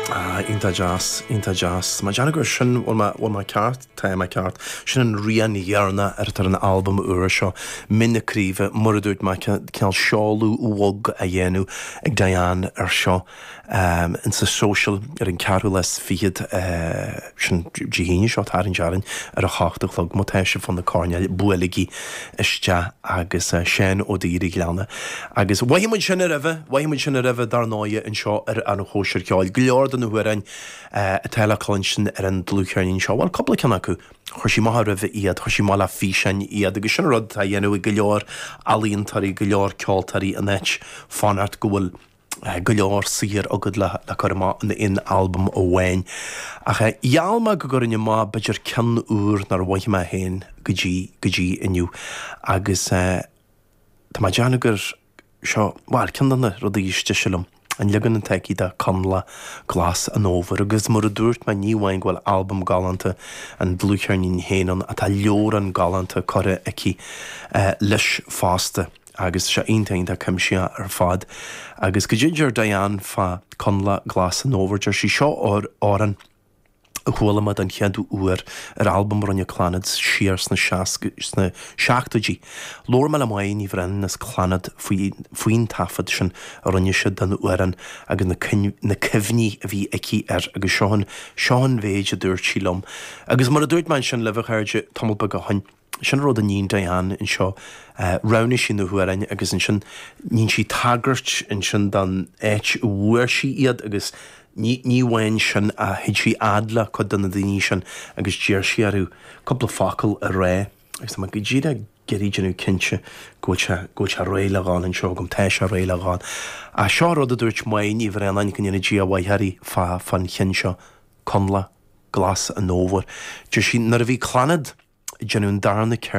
Ah, iontach deas, iontach deas. Tá mé ag déanamh gur sin, bhfuil mé, bhfuil mé ceart? Tá mé ceart. Sin an rian deireanach atá ar an albam úr seo, Mín na Craoibhe, mar a dúirt mé cineál seoladh bhog á dhéanamh ag Diane ar seo. Ins sa Social ar an ceathrú lá is fichead. sin, Dé hAoine seo, ag tarraingt orainn ar a hocht a chlog, má tá sibh fá na coirnéil, buailigí isteach agus Seán Ó Duibhir a' Ghleanna. Agus mhoithigh muid sin a roimhe, mhoithigh muid sin a roimhe dar ndóighe anseo ar An Chóisir Cheoil, go leor de na hamhráin atá le cluinstin ar an dlúthcheirnín seo, bhuel, cúpla ceann acu, chuir sí amach a roimhe iad, chuir sí amach le físeáin iad agus sin an rud atá á dhéanamh ag go leor ealaíontóirí, go leor ceoltóirí in áit fanacht go bhfuil. go leor saothar agad le cur amach in aon albam amháin, ach gheall mé go gcuirfinn amach b'fhéidir ceann úr nár mhoithigh mé féin go dtí go dtí inniu, agus tá mé ag déanamh gur seo, bhuel, ceann de na rudaí is deise liom, an leagan atá aici de Coinleach Glas an Fhómhair, agus mar a dúirt mé, ní amháin go bhfuil albam galánta an dlúthcheirnín féin ann, ach tá leabhrán galánta curtha aici leis fosta. agus tá sé iontach, iontach cuimsithe ar fad. Agus goidé a deir Diane fá Coinleach Glas an Fhómhair, deir sí, Seo amhrán a chuala mé den chéad uair ar albam a rinne Clannad siar sna sna seachtóidí. Labhair mé le Máire Ní Bhraonáin as Clannad faoi faoin taifead sin a rinne siad den amhrán agus na na cuimhní a bhí aici air agus seo an seo an mhéid a dúirt sí liom. Agus mar a dúirt mé ansin libh, a chairde, tamall beag ó shin, Sin an rud a níonn Diane anseo. Roghnaigh sí na hamhráin agus ansin níonn sí tagairt ansin don áit a bhfuair sí iad agus ní amháin sin ach chuaigh sí a fhad le cuid de na daoine sin agus d'iarr sí orthu cúpla focal a rá agus tá mé go díreach ag iarraidh déanamh cinnte go bhfuil sé go bhfuil sé réidh le ghabháil anseo agam. Tá sé réidh le ghabháil. Ach seo an rud a dúirt Máire Ní Bhraonáin go ndéana Dia a mhaith uirthi fá fán cheann seo. Coinleach Glas an Fhómhair. Deir sí, 'Nuair a bhí Clannad ag déanamh an darna ceir